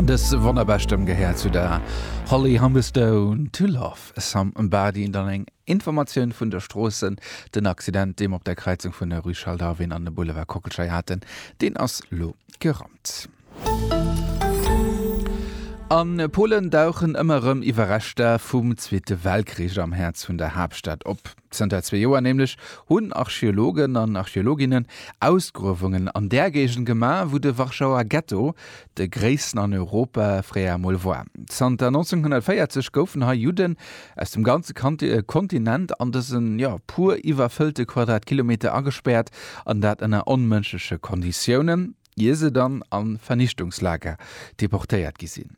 An dës wonnerbar Stëmm gehéiert zu der Holly Humberstone, To Love Somebody. An dann eng Informatioun vun der Stroosse, Den Accident, dee mer op der Kräizung vun der Rue Charles Darwin an dem Boulevard Kockelschei haten, deen ass lo gerannt. A Polen dauchen ëmmer erëm Iwwerreschter vum Zweete Weltkrich am Häerz vun der Haaptstad op. Zënter zwee Joer nämlech hunn Archeologen an Archeologinnen Ausgruewungen an där Géigend gemaach, wou de Warschauer Ghetto, de gréissten an Europa, fréier emol war. Zanter 1940 goufen hei Judden aus dem ganze Kontinent an dëse, jo, puer iwwerfëllte Quadratkilometer agespäert, an dat ënner onmënschleche Konditiounen, ier se dann a Vernichtungslager deportéiert gi sinn.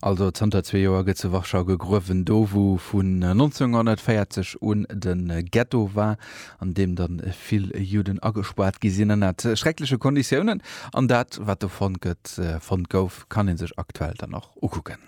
Also zanter zwee Joer gëtt zu Warschau gegruewen, do wou vun 1940 un de Ghetto war, an deem dann vill Juden agespaart gi sinn, ënnert schreckleche Konditiounen. An dat wat do fonnt gëtt, fonnt gouf, kann ee sech aktuell dann och ukucken.